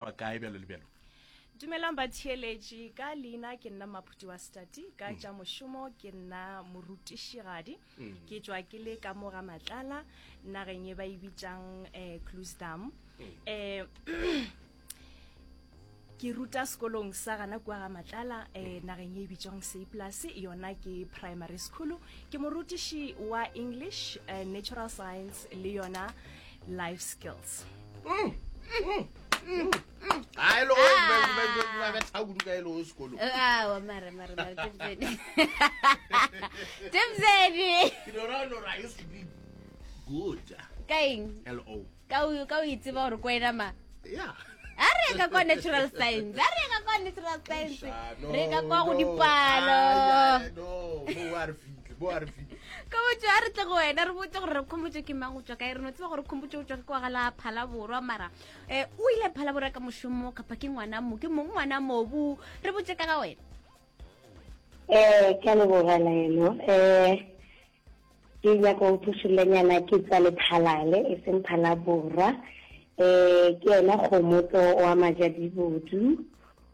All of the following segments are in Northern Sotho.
ba kae bjalo le bjalo dumelang batheeletši ka leina ke nna maphuti wa stati ka tša mošomo ke nna morutišigadi ke tšwa ke le ka mo ga matlala nageng e ba e bitšang um clusdam um ke ruta sekolong sa gana kua ga matlala um nageng e bitswang seplus yona ke primary school ke morutiši wa english uh, natural science le yona life skills ka o itseba gore ko ena ma a re ka kwa natural science a re ka kwa natural science re ka kwa go dipalo re bo a re fitse ka botse a re tle go wena re botse gore re khomotse ke mang go tswa kae re no tseba gore khomotse go tswa ke kwa gala phala borwa mara eh o ile phala borwa ka moshomo kapa ke ngwana mo ke mong ngwana mobu re botse ka ga wena eh ke le boga la eno eh ke ya go thushile nyana ke tsa le phalale e seng phala borwa eh ke ena khomotso wa majadibudu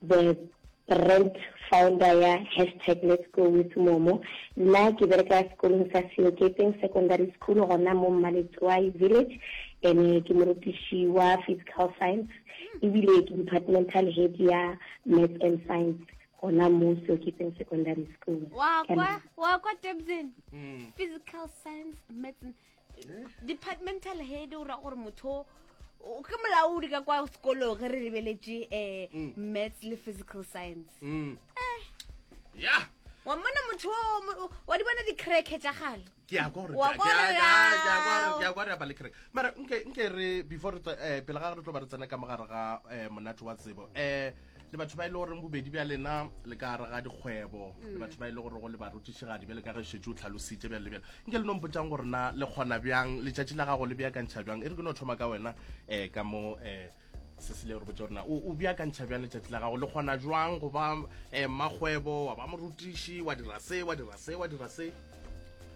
The brand founder ya hashtag Let's Go With Momo. Nna ke bereka sekolong sa Seokepeng Secondary School gona mo Mmaletswai Village ene ke morutiši wa physical science ebile ke departmental head ya maths and science gona mo Seoketseng Secondary School. Wa kwa wa kwa Durban. Mm. Physical science, maths. departmental head o ra gore motho o ke molaodi ka kwa sekolong ge re lebeletše um maths le physical science Mm. Eh, ya wa mmona motho o mo- wa di bona di-cracke tša gale ke ya kwa gore- Wa ke- kwa ke- gore ke- ke- ke ya kwa gore- ya. ke ya kwa re apale kereke mara nke nke re before re tswa- eh, pele ga re tlo ba re tsena ka mogare ga um monate wa tsebo um le batho ba e le goreng bobedi bja lena le ka gare ga dikgwebo le mm. batho ba e le gore go le barutišigadi bjale ka ge šetse o tlhalositše bjale le bjale nke le no mpotsang gore na le kgona bjang letšatši la gago le beakantšha bjang e re ke no thoma ka wena um ka mo um eh, se se le re botse gorena o beakantšha bjang letšatši la gago le kgona jwang go ba um eh, makgwebo wa ba morutiši wa dira se wa dira se wa dira se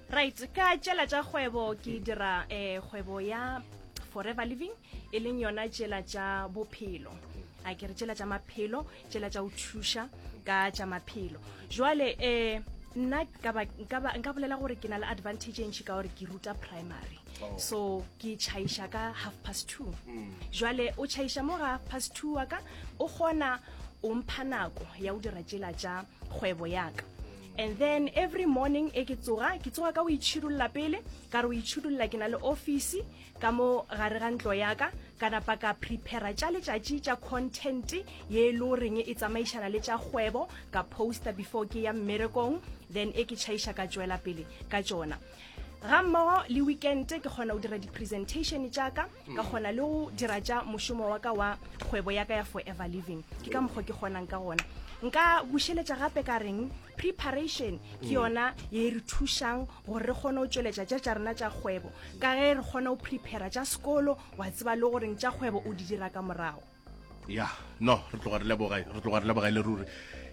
right ka tšela tša kgwebo ke dira um kgwebo ya forever living e leng yona tšela tša bophelo a ke re tšela tša maphelo tšela tša go thuša ka tša maphelo jwale um nna nka bolela gore ke na le advantage e ntšhi ka gore ke ruta primary oh. so ke chaiša ka half past two mm. jwale o chaiša mo ga half past two wa ka o kgona o mpha nako ya go dira tšela tša kgwebo yaka and then every morning e ke tsoga ke tsoga ka o itšhidulla pele ka re o itšhidulla ke na le office ka mo gare ga ntlo yaka ka napa ka prepara tša letšatši tša content ye e le goreng e tsamaišana le tša kgwebo ka poster before ke ya mmerekong then e ke tšhaiša ka tšwela pele ka tšona ga mmogo le weekend ke kgona go dira di-presentation tšaka ka kgona le go dira tša mošomo wa ka wa kgwebo ya ka ya forever living ke ka mokgwa ke kgonang ka gona nka bušeletša gape ka reng preparation ke yona ye e re thušang gore re kgone go tšweletša tša tša rena tša kgwebo ka ge re kgone go prepara tša sekolo wa tseba le goreng tša kgwebo o di dira ka morago ya no re tloga re leboga re tloga re leboga e le ruri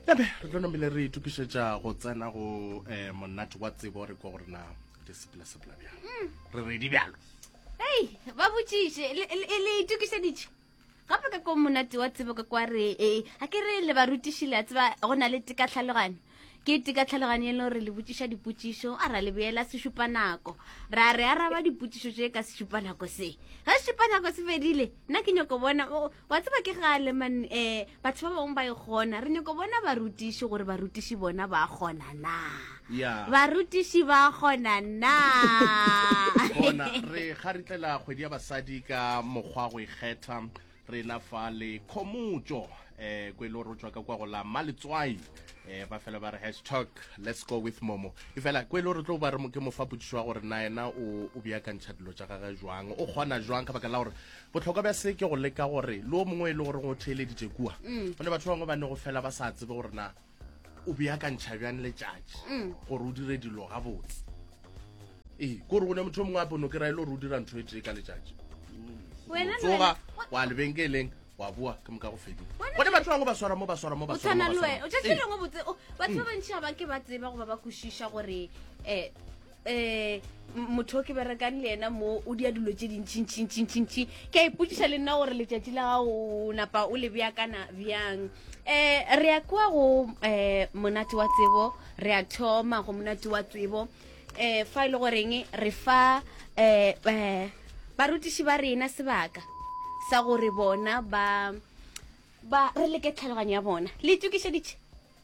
ya be re tlo nomele re itokišetša go tsena go eh, monate wa tsebo re kwa gore na di sepela-sepela bjang re redi bjalo ei ba botšiše le- le le itokišeditše gape ka ko monate wa tsebo ka kwa re e ga ke re le barutiši le a tseba go na le teka tlhaloganyo ke teka tlhaloganyo e leng gore le botsiša dipotsišo a ra le boela sešupa nako ra re araba dipotsišo tše ka sešupa nako se ga sešupa nako se fedile nna ke nyoko bona wa tseba ke gale man um batho ba bangwe ba e kgona re nyako bona barutiši gore barutiši bona ba kgona na yeah. barutiši ba kgona na bona re kgaritlela kgwedi ya basadi ka mokgwa go ikgetha re na fa le khomotso um eh, ko e le gore o tswa ka kwa go la maletswai eh ba fela ba re hashtag let's go with momo e fela ko e le gore tlo ba re ke mofa potsiso wa gore na ena o o beakantšha dilo tša gage jwang o kgona jwang ka baka la gore Bohlokwa bja se ke go leka gore le o mongwe e le goreng o theeleditše kua, go ne batho ba bangwe ba ne go fela ba sa tsebe gore na o beakantšha bjang letšatši gore o dire dilo gabotse. Ee, ke gore go ne motho yo mongwe gape o ne o kry-a e le gore o dira ntho e tee ka letšatši, o Wena le tsoga wena- wa lebenkeleng wa boa ke moka go fedile. Wena- Gone batho ba bangwe ba swara mo ba swara mo ba o swara mo, tshwana ba le swara wena mo. o tšatši Ee. lengwe botse o- batho ba bantši ga ba ke ba tseba goba ba kwešiša gore um um motho o ke berekang le ena mo o dia dilo tse dintšintšintšintšintši ke a ipotsiša le nna gore letšatši la gago napa o le beakana bjang um re ya kwa go um monate wa tsebo re ya thoma go monate wa tsebo um fa e le goreng re fa um barutiši ba rena sebaka sa gore bona ba ba re leke tlhaloganyo ya bona le itokišeditše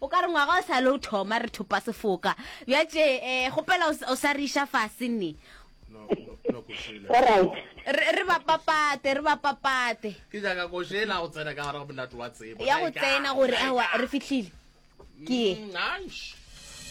O ka re ngwaga o sa le o thoma re thopa sefoka. Bja tše eh gopela o s- o sa re iša fase nne. Alright. Re re ba papate, re ba papate. Ke nyaka ko šela go tsena ka gare ga monate wa tsebo. Ya go Like, tsena ah, gore like, awa ah. re fihlile. Ke ye. Mm, aish.